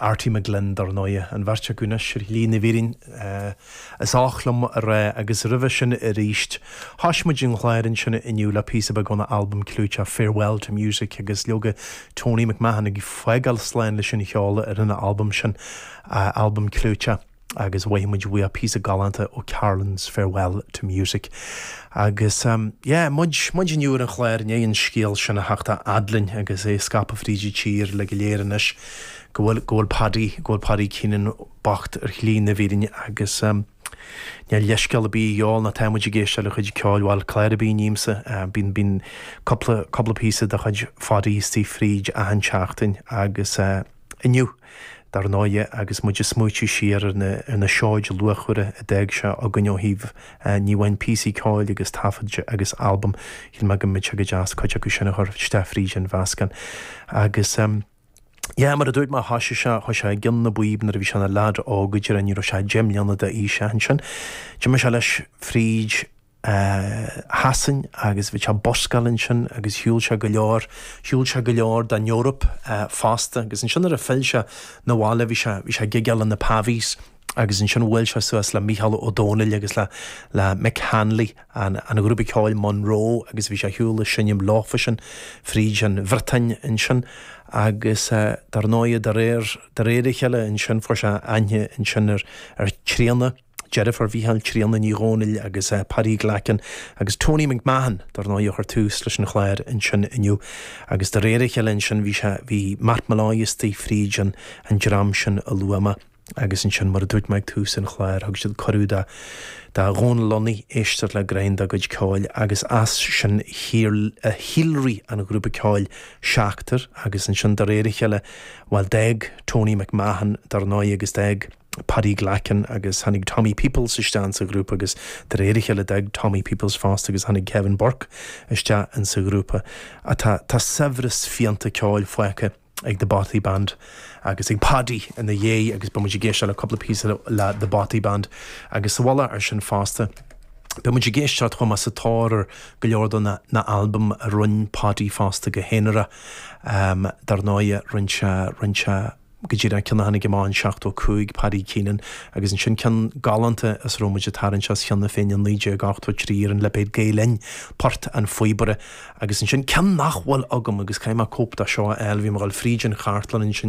Arty McGlynn, dar ndóigh. An bheirt acu anois ar shlí na bhfírinne, is oth liom a rá, agus roimhe sin aríst. Thoisigh muid an chlár ansin inniu le píosa beag óna albam clúiteach Farewell to Music agus leoga Tony McMahon ag fágáil slán leis an cheol ar an albam sin, a albam clúiteach. agus mhothaigh muid uaidh píosa galánta ó Carolan's Farewell to Music. Agus yeah, muid, muid inniu ar an chlár i ndéidh an scéal sin a theacht a fhad linn agus é ag scaipeadh fríd an tír uilig go léir anois go bhfuil, go bhfuil Paddy, go bhfuil Paddy Keenan bocht ar shlí na bhfírinne agus níl leithscéal a' bith a dhíobháil ná tá muid ag éisteacht le chuid ceoil, bhuel clár a' bith a nímsa, bíonn, bíonn cúpla, cúpla píosa de chuid Phaddy istigh fríd achan tseachtain agus eh. Inniu, dar ndóigh, agus muid ag smaoitiú siar ar na seoid luachmhara a d'fhág sé againn ó thaobh ní amháin píosaí ceoil agus taifead agus albaim, shíl mé go mbeadh sé go deas cuid acu sin a chur isteach fríd an mheascán. Agus, yeah, mar a dúirt mé, thoisigh sé, thoisigh sé i gcionn na bpíob nuair a bhí sé ina leaid óg, go deimhin ní raibh sé deich mbliana d'aois ach ansin d'imigh sé leis fríd. Shasain agus bhí sé ag buscáil annsin agus shiúl sé go leor, shiúl sé go leor den Eoraip fosta agus annsin nuair a phill sé na bhaile bhí sé, bhí sé ag gigeáil in na Pavees agus annsin bhuail sé suas le Mícheál Ó Domhnaill agus le, le Mick Hanly an, an ghrúpa ceoil Monroe agus bhí sé ar shiúl ag seinnim leofa sin fríd an Bhriotáin annsin agus dar ndóigh de réir, de réir a chéile annsin fuair sé aithne annsin ar, ar Tríona. Deirfiúr Mhícheáil Tríona Ní Dhomhnaill agus Paddy Glackin agus Tony McMahon dar ndóigh a chuir tús leis an chlár ansin inniu agus de réir a chéile ansin bhí sé, bhí Matt Molloy istigh fríd an dream sin a luadh mé agus ansin mar a dúirt mé ag tús an chláir thug siad cuireadh do Dhónal Lunny éisteacht le greim dá gcuid ceoil agus as sin shíolraigh an ghrúpa ceoil Seachtar agus ansin de réir a chéile bhuel d'fhág Tony McMahon dar ndóigh agus d'fhág Paddy Glackin agus tháinig Tommy Peoples isteach sa ghrúpa agus de réir a chéile d'fhág Tommy Peoples fosta agus tháinig Kevin Burke isteach in sa ghrúpa. Tá tá saibhreas fiánta ceoil fágtha ag The Bothy Band agus ag Paddy ina dhéidh agus beidh muid ag éisteacht le cúpla píosa le The Bothy Band agus sa mhullach air sin fosta beidh muid ag éisteacht chomh maith sa tóir ar go leor do na na albaim a rinn Paddy fosta go haonarach dar ndóigh rinn sé rinn sé go dtí an ceann a tháinig amach in 75, Paddy Keenan, agus ansin ceann galánta as a raibh muid ag tarraingt as cheana féin in 1983 ar an lipéad Gael Linn, Poirt an Phíobaire. Agus ansin ceann nach bhfuil agam agus caithfidh mé cóip de seo a fháil, bhí mé ag dul fríd an chartlann ansin,